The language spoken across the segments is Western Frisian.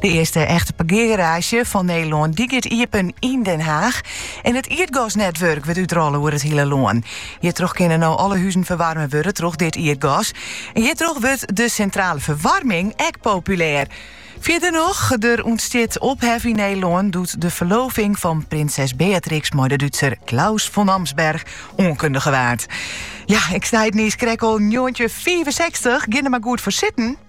De earste echte parkeargaraazje fan Nederlân die giet iepen yn Den Haag. En it ierdgasnetwurk wurdt útrolle oer it hiele lân. Hjirtroch kinne no alle huzen ferwaarme wurde troch dit ierdgas. En hjirtroch wurdt de sintrale ferwaarming ek populêr. Fierder noch, der ûntstiet ophef yn Nederlân doe't de ferloving fan prinses Beatrix mei de Dútser Claus von Amsberg oankundige waard. Ja, ik sei it niiskrekt al njoggentjinhûndertfiifensechstich, gean der mar goed foar sitten.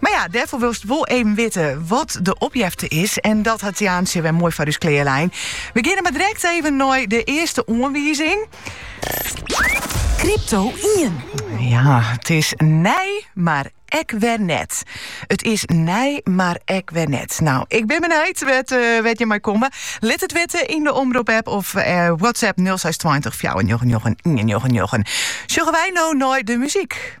Mar ja, dêrfoar wolst wol even witte wat de opjefte is en dat hat Jaantsje wer moai foar ús klearlein. We geane mar direkt even nei de earste oanwizing. Krypto ien. Ja, it is nij, mar ek wer net. It is nij, mar ek wer net. No, ik bin benijd wêr't, uh, wêr't je mei komme. Lit it witte yn de Omrop-app of uh, WhatsApp 0620 499 199. Sjogge wy no nei de muzyk.